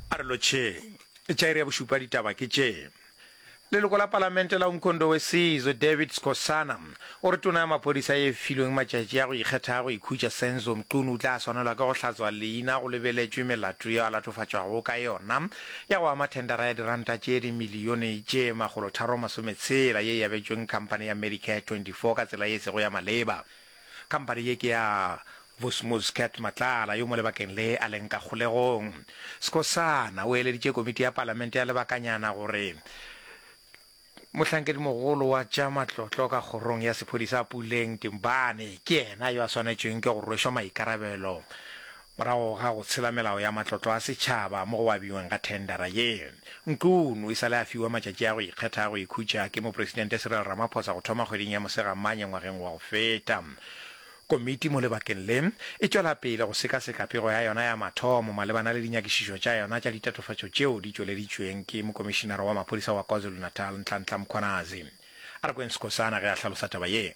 A re lotšheng. Tša iri ya bošupa ditaba ke tše. Leloko la palamente la Umkhondo Wesizwe, David Skosana, o re tona ya maphodisa e filweng matšatši a go ikgetha a go ikhutša Senzo Mchunu o tla swanelwa ke go hlatswa leina go lebeletšwe melato yeo a latofatšwago ka yona ya go ama thendara ya diranta tše dimilione tše makgolotharo masometshela ye e abetšweng khamphane ya Medicare 24 ka tsela ye e sego ya maleba. Khamphani ye ke ya Vusmuz Cath Matlala yo mo lebakeng le a leng ka kgolegong. Skhosana o eleditše komiti ya palamente ya lebakanyana gore mohlankedimogolo wa tša matlotlo ka kgorong ya sephodisa Puleng Timbane ke yena yo a swanetšweng ke go rwešwa maikarabelo Morago ga go tshela melao ya matlotlo a setšhaba mo go abiweng ga thendera ye, Nqun o e sa le a fiwa matšatši a go ikgetha a go ikhutša ke Mopresidente Cyril Ramaphosa go thoma kgweding ya Mosegamanye ngwageng wa go feta. Komiti mo lebakeng le e tšwela pele go sekaseka pego ya yona ya mathomo malebana le dinyakišišo tša yona tša ditatofatšo tšeo di tšweleditšweng ke Mokomišinara wa Maphodisa wa KwaZulu-Natal, Nhlanhla Mkhwanazi. A re kweng Sikhosana ge a hlalosa taba ye.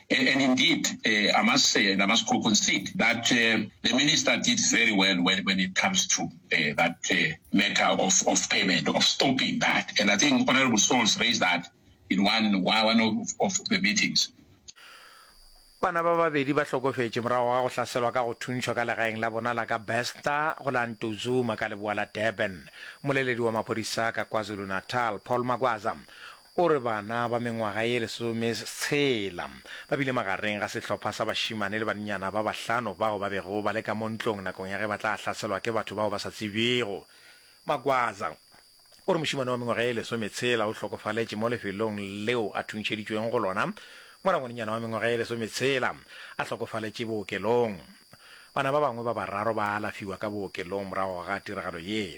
And indeed, I must say and I must concede that the Minister did very well when when it comes to that matter of of payment, of stopping that. And I think Honourable Souls raised that in one one of of the meetings. Bana ba babedi ba hlokofetše morago ga go hlaselwa ka go thuntšhwa ka legaeng la bona la ka Besta go la Ntuzuma ka leboa la Durban. Mmoleledi wa maphodisa ka KwaZulu-Natal, Paul Magwaza, O re bana ba mengwaga ye lesometshela ba bile magareng ga sehlopha sa bašemane le bannyana ba bahlano bao ba bego ba le ka mo ntlong nakong ya ge ba tla hlaselwa ke batho bao ba sa tsebjego. Magwaza o re mošemane wa mengwaga ye lesometshela o hlokofaletše mo lefelong leo a thuntšheditšweng go lona mola ngwanenyana wa mengwaga ye lesometshela a hlokofaletše bookelong. Bana ba bangwe ba bararo ba alafiwa ka bookelong morago ga tiragalo ye.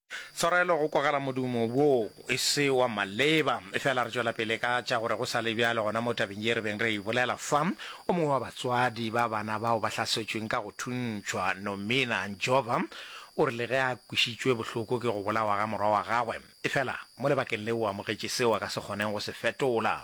Tshwarelo go kwagala modumo woo e se wa maleba. Efela re tšwela pele ka tša gore go sa le bjalo gona mo tabeng ye re beng re e bolela fa. O mongwe wa batswadi ba bana bao ba hlasetšweng ka go thuntšhwa, Nomina Njova, o rile ge a kwešitšwe bohloko ke go bolawa ga morwa wa gagwe, efela mo lebakeng leo o amogetše seo a ka se kgoneng go se fetola.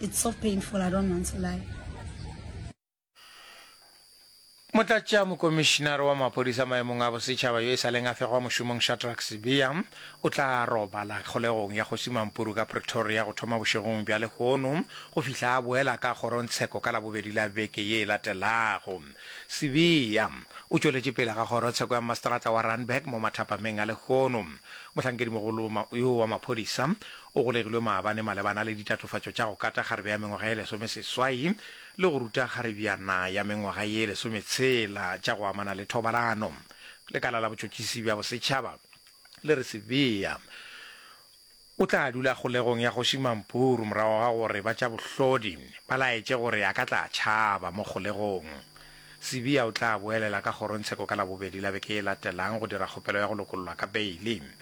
It's so painful, I don't want to lie. Motlatšamokomišinare wa maphodisa maemong a bosetšhaba yo e sa leng a fegwa mošomong Shadrack Sibiya o tla robala kgolegong ya Kgoši Mampuru ka Pretoria go thoma bošegong bja lehono go fihla a boela ka kgorongtsheko ka Labobedi la beke ye e latelago. Sibiya o tšweletše pele ga kgorotsheko ya mmaseterata wa Randburg mo mathapameng a lehono. Mohlankedimogolo yo wa maphodisa O golegilwe maabane malebana le ditatofatšo tša go kata kgarebe ya mengwaga ye lesomeseswai le go ruta kgarebyana ya mengwaga ye lesometshela tša go amana le thobalano. Lekala la Botšotšisi bja Bosetšhaba le re Sibiya o tla dula kgolegong ya Kgoši Mampuru morago ga gore ba tša bohlodi ba laetše gore a ka tla tšhaba mo kgolegong. Sibiya o tla boelela ka kgorongtsheko ka Labobedi la beke e latelang go dira kgopelo ya go lokollwa ka beile.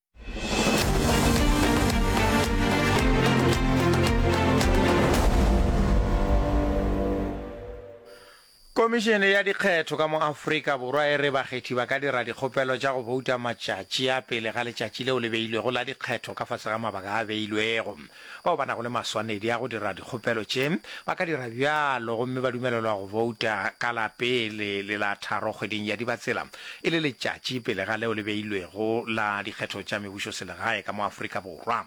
Komišene ya dikgetho ka mo Afrika Borwa e re bakgethi ba ka dira dikgopelo tša go bouta matšatši a pele ga letšatši leo le beilwego la dikgetho ka fase ga mabaka a beilwego. Bao ba nago le maswanedi a go dira dikgopelo tše ba ka dira bjalo gomme ba dumelelwa go bouta ka la pele le la tharo kgweding ya Dibatsela, e le letšatši pele ga leo le beilwego la dikgetho tša mebušoselegae ka mo Afrika Borwa.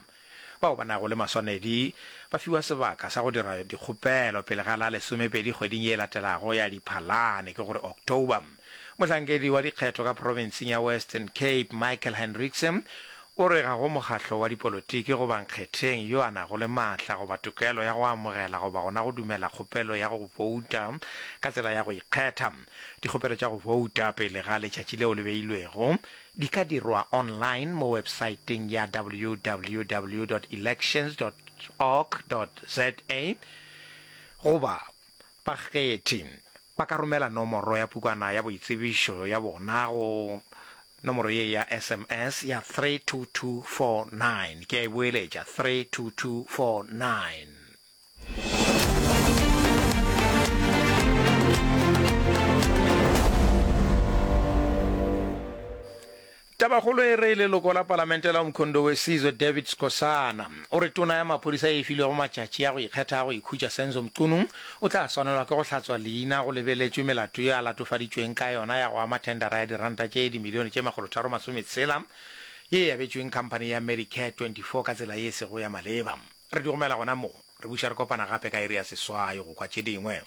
Bao ba nago le maswanedi ba fiwa sebaka sa go dira dikgopelo pele ga la lesomepedi kgweding ye e latelago ya Diphalane, ke go re October. Mohlankedi wa dikgetho ka profenseng ya Western Cape, Michael Hendrikse, o re ga go mokgahlo wa dipolotiki goba nkgetheng yo a nago le maatla goba tokelo ya go amogela goba gona go dumela kgopelo ya go bouta ka tsela ya go ikgetha. Dikgopelo tša go bouta pele ga letšatši leo le beilwego di ka dirwa online mo websaeteng ya www dot elections dot org dot za goba Bakgethi ba ka romela nomoro ya pukwana ya boitsebišo ya bona go nomoro ye ya SMS ya 32249, ke a e boeletša, 32249. Tabakgolo e re leloko la palamente la Umkhondo Wesizwe David Skhosana o re tona ya maphodisa e filwego matšatši a go ikgetha a go ikhutša Senzo Mchunu o tla swanelwa ke go hlatswa leina go lebeletšwe melato ye a latofaditšweng ka yona ya go ama thendara ya diranta tše dimilione tše makgolo tharo masome tshela ye e abetšweng khamphani ya Medicare 24 ka tsela ye e sego ya maleba. Re di romela gona mo. Re buša re kopana gape ka iri ya seswai go kwa tše dingwe.